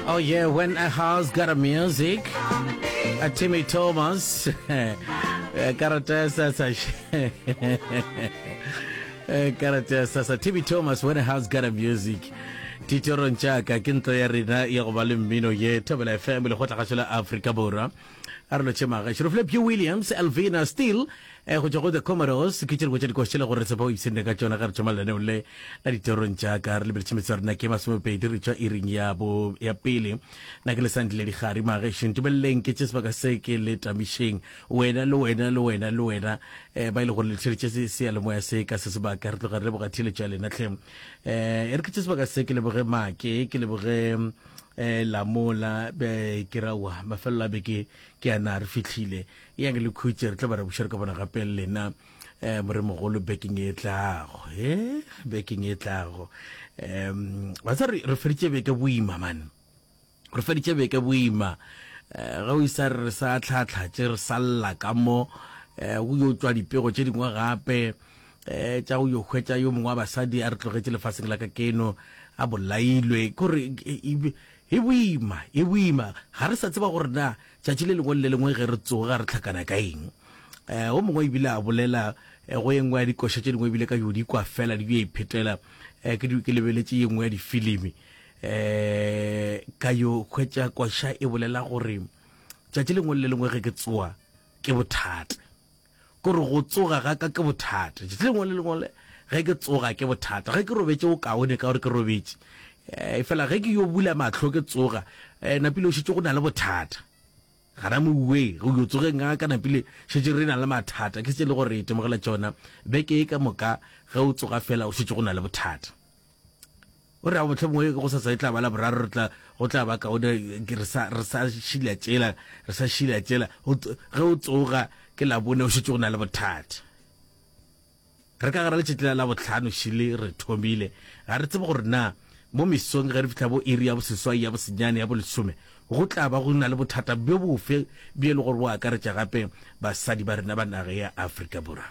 Oh yeah, when a house got a music. A Timmy Thomas. Karata sasa. Karata sasa. Timmy Thomas, when a house got a music. titorong jaaka ke ntlo ya rena ya go ba le mmino ye thobela fm le go tla gašo la aforika borwa A re lo tšhe maga šoro fle Pugh Williams, Elvina Steele, eh, go tšwa go The Commodores, ke tše dingwe tša dikoši tše le gore re tshepa o ipshinne ka tšona ge re tšhoma lenaneong le la ditorong tša ka. Re lebeletše metse ya rena ke masomepedi re tšwa iring ya bo ya pele. Na ke le sandile dikgari magešo, ntumeleleng ke tše sebaka se ke le tamišeng. Wena le wena le wena le wena, eh, ba e le gore le tlišeditše se seyalemoya se ka se sebaka, re tloga re leboga theeletšo ya lena hle. Eh, e re ke tše sebaka se ke leboge Make, ke leboge eh la mola be ke rawa mafelelo a beke ke ana re fitlhile ya ke le khutse re tla ba re bušere ka bona gape lena eh more mogolo bekeng e tlago he bekeng e tlago um ba sa re feditse beke boima man re feditse beke boima eh, ga o isa re sa tlhatlhatše re salla ka mo eh, o yo tswa dipego tše dingwe gape um tša go yo hwetša yo mongwe wa basadi a re tlogetše lefaseng la ka keno a bolailwe kore e boima e boima ga re sa tseba gore na tšatši le lengwe le le lengwe ge re tsoga re tlhakana ka eng um o mongwe ebile a bolela eh, go e nngwe ya dikoša tše dingwe ebile ka yo di kwa fela di yo iphetela eh, ke ke lebeletše ye nngwe ya difilimi um ka yo hwetša koša e bolela gore tšatši lengwe le lengwe ge ke tsoa ke bothata Ke gore go tsoga ga ka ke bothata. Tšatši lengwe le lengwe le ge ke tsoga ke bothata. Ge ke robetše o kaone ka gore ke robetše. Efela ge ke yo bula mahlo ke tsoga, napile o šetše go na le bothata. Gana mouwe, go yo tsogeng ga ka napile šetše re na le mathata. Ke se le gore re itemogela tšona beke ye ka moka ge o tsoga fela o šetše go na le bothata. o re a botlhe bongwe go sa tsaye tla ba la boraro re tla go tla ba kaone re sa re sa shila tšela re sa shila tšela ge o tsoga ke la bone o šetse go na le bothata re ka gara letšatši la botlhano šile re thomile ga re tsebe gore na mo mesong ge re fitlha bo iri ya boseswai ya bosenyane ya bolesome go tla ba go na le bothata bjo bofe bjo e le gore bo akaretša gape basadi ba rena ba nage ya afrika borwa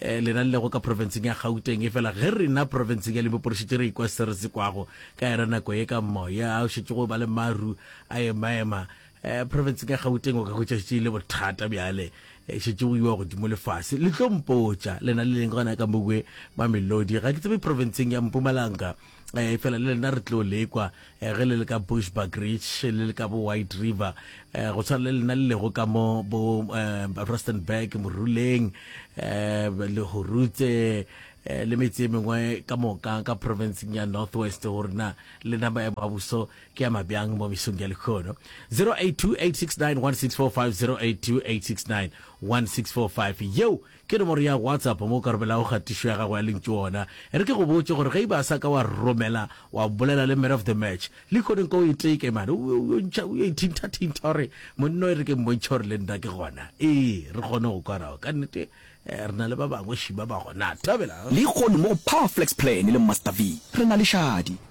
eh, lena le lego ka profenseng ya gauteng e fela ge rena profenseng ya limpopo re šetse re ikwa se re se kwago ka era nako ye ka moya o šetse go ba le maru a emaema um eh, profenseng ya gauteng o ka hwetša šetse e le bothata bjale eh, šetse go iwa godimo lefase le tlo mpotša lena le leng gona ka mowe mamelodi ga ke tsebe profenseng ya mpumalanga eh, fela le lena re tlo lekwa eh, ge le le ka bushback ridge le le ka bo white river eh, go tshwana le lena le lego ka mo bo eh, rustenburg moruleng eh, le horutse eh, le metse e mengwe ka moka ka provinceng ya north west go rena lena maemo a buso ke ya mabjang mo mesong ya lekgono 0828691645 0828691645 yeo Ke nomoro ya WhatsApp mo o ka romelago kgatišo ya gago ya lentšu gona. E re ke go botše gore ge e ba a sa ka wa romela, wa bolela le Man of the Match. Lehono nko o e teke mane, o yo o ntšha, o yo ithinthathintha o re, Monna o e re ke mmontšhe gore le nna ke gona. Ee, re kgone go kwa nao. Ka nnete, re na le ba bangwe šima ba gona. Thabela! Lehono mo go Power Flex Plan le Master V, re na le šadi.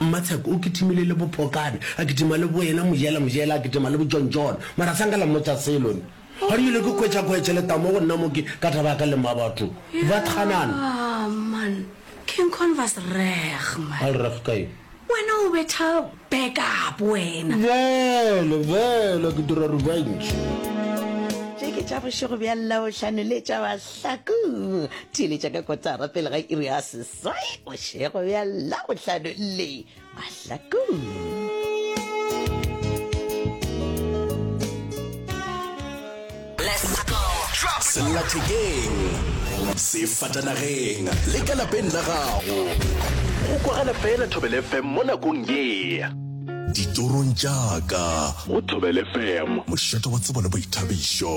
Mmatsheko o kitimile le Bophokane, a kitima le Boena, Mojela, Mojela a kitima le Bojontjone. Mara sa nka la mmotša selo nna. Ga di nyole ke kwetša ko etšele tamo go nna mo ke ka taba ya ka le Mmabatho. Ba thanana. Yaa man, ke nkon vas reg man. Al reg ka eng? Wena o betha back up wena. Bjale, bjale ke dira revenge. Tše ke tša bošego bja Labohlano le tša Mahlaku. Theeletša ka kotara pele ga iri ya Soy bošego bja labohlano le mahlakong. sellathekeng sefatanageng le ka lapeng la gago go kwagala fela thobele fm mo nakong ye ditorong jaaka go thobele fm mošeto wa tsebo le boithabišo